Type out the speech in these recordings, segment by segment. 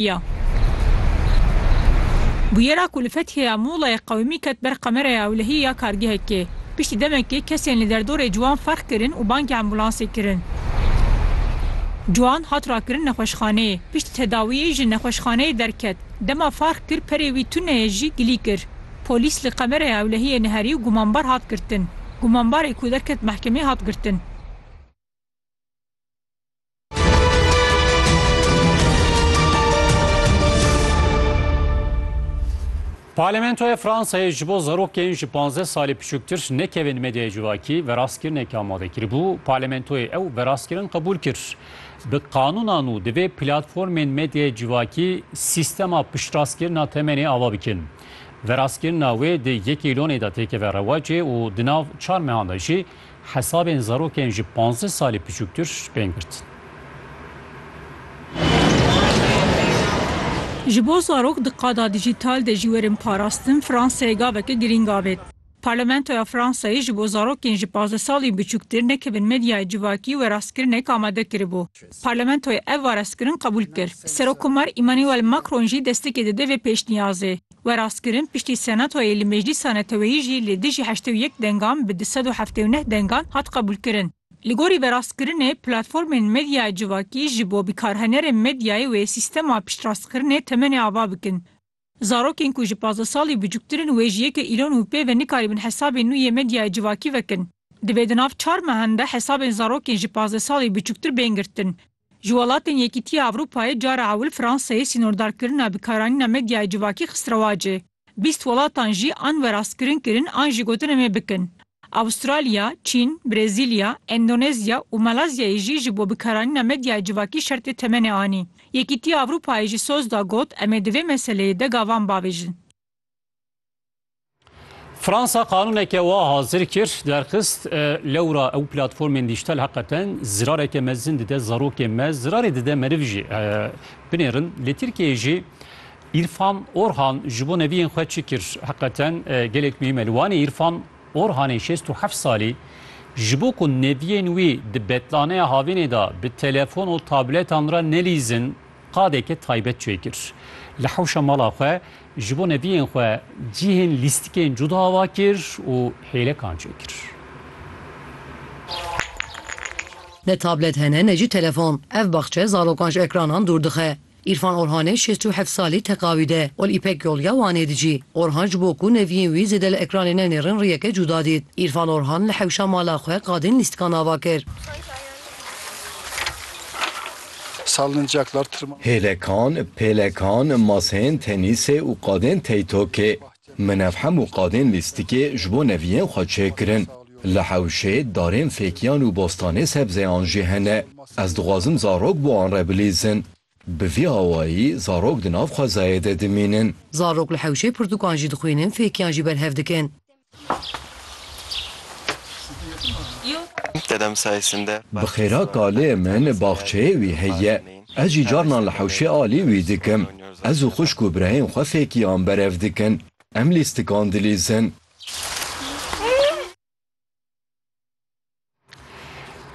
ya. Bûyera ku li Fethiyê ya Muğlayê qewimî ket ber kameraya ewlehiyê ya kargehekê. Piştî demekê kesên li derdorê ciwan ferq kirin û bangê ambûlansê kirin. Ciwan hat rakirin nexweşxaneyê. Piştî tedawiyê ji nexweşxaneyê derket. Dema ferq kir perê wî tune ye jî gilî kir. Polîs li kameraya ewlehiyê neherî û gumanbar hat girtin. Gumanbarê ku derket mehkemê hat girtin. Parlamentoya Fransayê ji bo zarokên ji 15 salî piçûktir nekevin medyaya civakî verastkirinekî amade kiribû. Parlamentoyê ew verastkirin qebûl kir. Bi qanûna nû divê platformên medyaya civakî sîstema piştrastkirina temenê ava bikin. Verastkirina wê di yekê lonê de têkeve rewacê û di nav çar mehan de jî Hesabên zarokên ji panzdeh salî piçûktir bên girtin. Ji bo zarok di qada dîjîtal de jî werin parastin, Fransayê gaveke girîng avêt. Parlamentoya Fransayê ji bo zarokên ji panzdeh salî biçûktir nekevin medyayê civakî werastkirinek amade kiribû. Parlamentoyê ev werastkirin qebûl kir. Serokkomar Emmanuel Macron jî destekê dide vê pêşniyazê. We rast kirin piştî Senatoyê li Meclîsa Neteweyî jî li dijî heştê û yek dengan bi du sed û heftê û neh dengan hat qebûlkirin. Li gorî verastkirinê, platformên medyaya civakî ji bo bikarhenerên medyayê wê sîstema piştrastkirinê temenê ava bikin. Zarokên ku ji pazdeh salî biçûktir in wê ji yekê îlon û pê ve nikarîbin hesabên nû yê medyaya civakî vekin. Divê di nav çar mehan de hesabên zarokên ji pazdeh salî biçûktir bên girtin. Ji welatên Yekîtiya Ewropayê cara ewil Fransayê sînordarkirina bikaranîna medyayê civakî xist rewacê. Bîst welatan jî an werastkirin kirin an jî gotin em ê bikin. Avustralya, Çîn, Brezîlya, Endonezya û Maleziyayê jî ji bo bikaranîna medyayê civakî şertê temenê anî. Yekîtiya Ewropayê jî soz da got, Em ê di vê meseleyê de gavan bavêjin. Fransa qanûneke wa hazir kir, derxist e, lewra ew platformên dîjtal heqeten zirareke mezin dide zarokê me, zirarê dide meriv jî e, binêrin. Li Tirkiyeyê jî Îrfan Orhan ji bo neviyên xwe çi kir? Heqeten e, gelek muhîm e. Li Wanê Îrfan Orhanê şêst û heft salî ji bo ku neviyên wî di betlaneya havînê de bi telefon û tabletan re nelîzin, Qadeke taybet çê kir. Li hewşa mala xwe ji bo neviyên xwe cihên lîstikên cuda ava kir û hêlekan çê kir. Ne tablet hene ne jî telefon. Ev baxçe zarokan ji ekranan dûr dixe. Îrfan Orhanê şêst û heft salî teqawîd e û li Îpek Yol ya Wanê dijî. Orhan ji bo ku neviyên wî zêde li ekranê nenêrin riyeke cuda dît. Îrfan Orhan li hewşa mala xwe qadên lîstikan ava kir. sallincaklar, tirmanan. Hêlekan, pêlekan, maseyên tenîsê û qadên teytokê. Min ev hemû qadên lîstikê ji bo neviyên xwe çêkirin. Li hewşê, darên fêkiyan û bostanê sebzeyan jî hene. Ez dixwazim zarok bi wan re bilîzin. Bi vî awayî zarok di nav xwezayê de dimînin. Zarok li hewşê pirtûkan jî dixwînin, fêkiyan jî berhev dikin. Bi xêra kalê min baxçeyê wî heye. Ez jî carnan li hewşê alî wî dikim. Ez û xwişk û birayên xwe fêkiyan berev dikin. Em lîstikan dilîzin.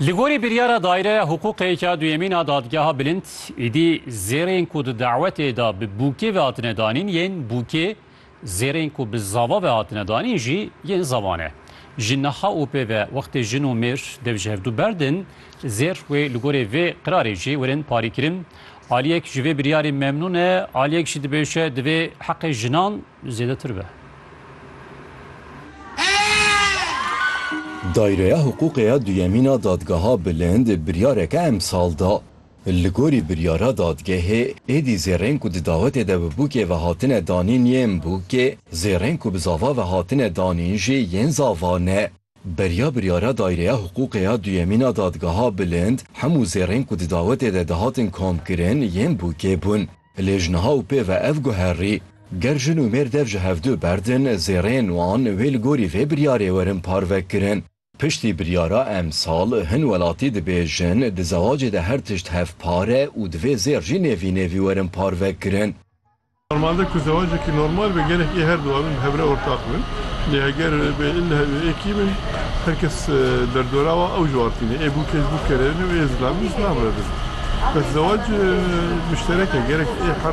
Li gorî biryara Daîreya Hiqûqê ya Duyemîn a Dadgeha Bilind, êdî zêrên ku di dawetê de bi bûkê ve hatine danîn yên bûkê, zêrên ku bi zava ve hatine danîn jî yên zava ne. Ji niha û pê ve wextê jin û mêr dev ji hevdû berdin, zêr wê li gorî vê qirarê jî werin parîkirin. Aliyek ji vê biryarê memnûn e, aliyek jî dibêje divê heqê jinan zêdetir be. Dayreya Hiqûqê ya Duyemîn a Dadgeha Bilind biryareke emsal da. Li gorî biryara dadgehê, êdî zêrên ku di dawetê de bi bûkê ve hatine danîn yên bûkê, zêrên ku bi zava ve hatine danîn jî yên zava ne. Beriya biryara Dayreya Hiqûqê ya Duyemîn a Dadgeha Bilind, hemû zêrên ku di dawetê de dihatin komkirin yên bûkê bûn. Lê ji niha û pê ve ev guherî, ger jin û mêr dev ji hevdu berdin, zêreyên wan wê li gorî vê biryarê werin parvekirin. Piştî biryara emsal, hin welatî dibêjin, di zewacê de her tişt hevpar e û divê zêr jî nêvî nêvî werin parvekirin. Normalde ku zewacekî normal be, gerek ê herdu wan bi hev re ortaq bin. Lê heger be ille hevê êkî bin, Her kes derdora wa ew juartîne. Ê bûkê ji bûkerê ne û ê zilamî ji zilam re dizin. Bes zewac muşterek e. Gerek ê her